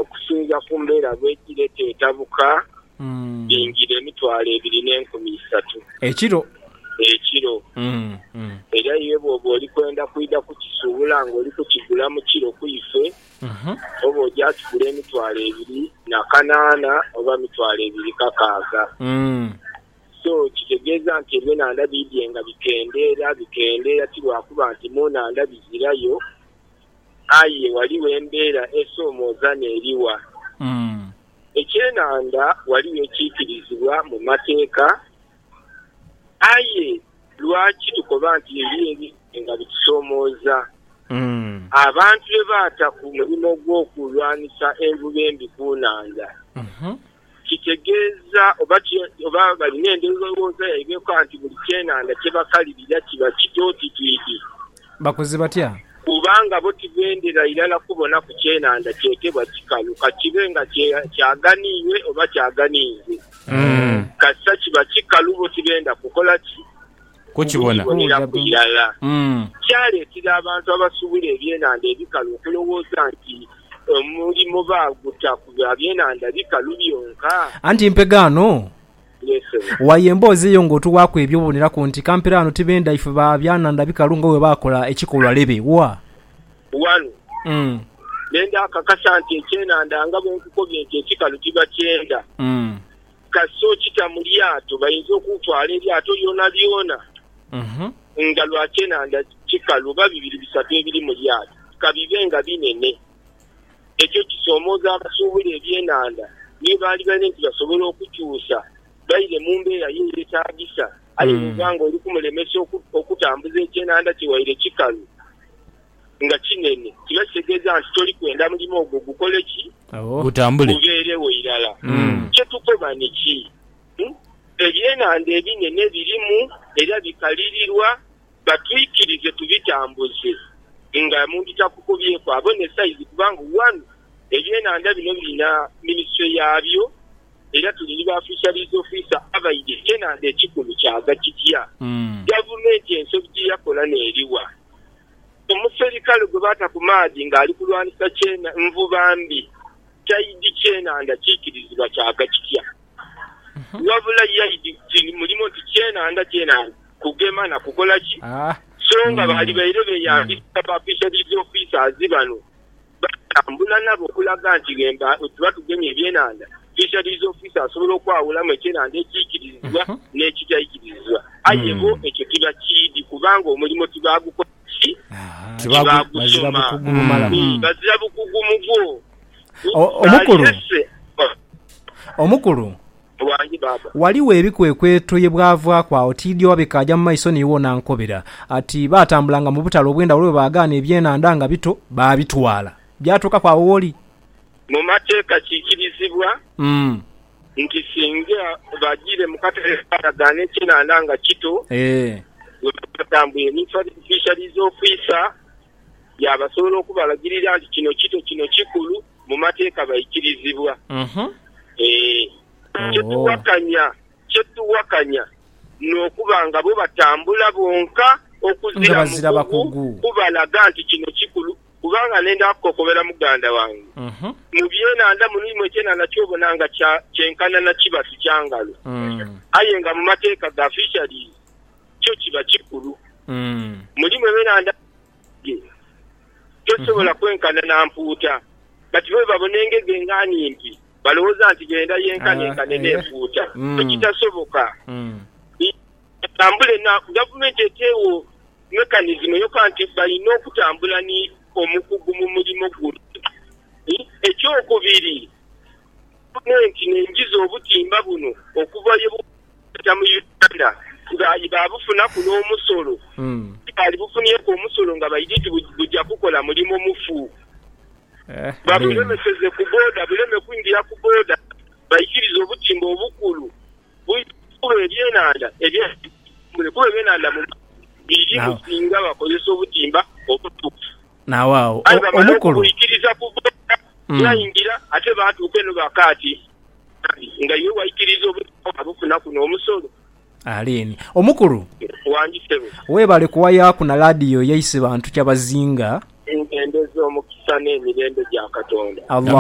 Okusinzira ku mbeera bwedhiri eteyo etabuka dhiingira emitwalo ebiri n'enkumi isatu Ekiro. ekiro. Era iwe bw'oba oli kwenda kwidha kukisuubula ng'oli kukigula mu kiro ku ife, oba oja kigula emitwalo ebiri na kanaana oba mitwalo ebiri kakaaga. So, kitegeeza nti ebyenhandha biidhye nga bikendeera bikendeera, ti lwakuba nti mu nhandha bizirayo, aye ghaligho embeera esoomooza n'eriwa. Ekyenhandha ghaligho ekiikirizibwa mu Mateeka, aye lwaki tukoba nti eriyo ebintu nga bitusoomooza? Abantu bye baata ku mulimo gw'okulwanisa envuba embi ku nhandha, Kitegeeza oba ki? Oba balina endhowooza yaibwe yoka nti buli kyenhandha kye bakalirira kiba kityo oti twidhi? Bakoze batya? Kubanga bo tibendera irala kubonaku kyenhandha kyetebwa kikalu, ka kibe nga kyaganiirwe oba kyaganiirwe. Kasita kiba kikalu, bo tibenda kukola ki? Okuboneraku irala, kyaletera abantu abasubula ebyenandha ebikalu okulowooza nti omulimo baaguta ku bya byenandha bikalu byonka. Anti mpegho ghano. Waaya emboozi eyo ng'otuwaaku ebyo oboneraku nti kampere ghano tibenda ife ba byanandha bikalu nga bwe baakola ekikolwa lebe wa. Ghano, benda kakasa nti ekyenandha nga bwe nkukobye nti ekikalu tibakyenda. Kasita okita mu lyato, bainza okutwala eryato lyonalyona nga lwa kyenhandha kikalu oba bibiri bisatu ebiri mu lyato, ka bibe nga binene. Ekyo kisoomooza abasuubula ebyenhandha niyo baalibaire nti basobola okukyusa baire mu mbeera ye eyetaagisa. Aye bw'oba ng'oli kumulemesa okutambuza ekyenhandha kye waire kikalu, nga kinene, kino kitegeeza nti toli kwenda mulimo ogwo gukole ki? Gubeerewo irala. Kye tukoba niki? Ebyenhandha ebinene birimu era bikalirirwa, batwikirize tubitambuze nga muntu takukubyeku abone saizi kubanga one ebyenhandha bino birina minisitule yaabyo era tuli ni ba Fisheries Officer abaidhi. Ekyenhandha ekikulu kyava kitya? Gavumenti ensobi gye yakola n'eriwa? omuserikale gwe baata ku maadhi ng'ali kulwanisa nvuba mbi, taidi kyenhandha kiikirizibwa kyaga kitya. Wabula yaidi ti mulimo nti kyenhandha kyenhandha kugema na kukola ki, so nga baali baire beeyambisa ba Fisheries Officers bano. Baatambula nabo okulaga nti ghemba bwetuba tugemye ebyenhandha, Fisheries Officer asobola okwawulamu ekyenhandha ekiikirizibwa n'ekitaikiririzibwa. Aye bo ekyo tibakiidhi kubanga omulimo tibaagukola ki? Tibaagusoma. Eeh, bazira bukugu mugwo. Omukulu, omukulu. Bwangi baaba. Ghaligho ebikwekweto ye bwavaaku agho tiidhi oba bikaaja mu maiso ni iwe onaankobera. Ati, Baatambulanga mu butale obw'endhawulo bwe baagaana ebyenhandha nga bito, baabitwala. Byatuukaku agho w'oli? Mu mateeka kiikirizibwa nti singa bajiire mu katale ne baagaana ekyenhandha nga kito, we baba batambwire ni Fisheries Officer yaabasobola okubalagirira nti kino kito, kino kikulu, mu mateeka baikirizibwa. Ee, kye tuwakanya, kye tuwakanya n'okuba nga bo batambula bonka okuzira mukugu kubalaga nti kino kikulu. Kubanga nenda kukokobera muganda wange, mu byenandha muno mulimu ekyenandha ky'obona nga kya, kyenkana na kibatu kya ngalo, aye nga mu mateeka ga fisheries kyo kiba kikulu. Mulimu ebyenandha. ghe. Tosobola kwenkana na mpuuta. But bwebabona engege nga nimpi balowoza nti benda yenkanenkane ne mpuuta ekitasoboka. Batambule na gavumenti etewo mechanism yoka nti balina okutambula ni omukugu mu mulimo guno. Ekyokubiri gavumenti nenjiza obutimba buno okuva ye. Baja mu Uganda nga aye baabufunaku n'omusolo. Tibaalibufunieku omusolo nga baidhi nti buja kukola mulimo mufu. Babulemeseze ku booda buleme kwingira ku booda. Baikirize obutimba obukulu buidhe kukuba ebyenhandha eby'enkungule kuba ebyenhandha mu maadhi birimu singa bakozesa obutimba obutuufu. Aye bamala okubuikiriza ku booda bwaingira ate baatuuka eno ba kaati. Kale, nga iwe waikiriiza obuzibu obwo kunaku n'omusolo. Alien. Omukulu. Wangi sebo. Webale kuwayaaku na ladio yaise bantu kyabazinga. Engendeza, omukisa n'emirembe bya Katonda. Allah.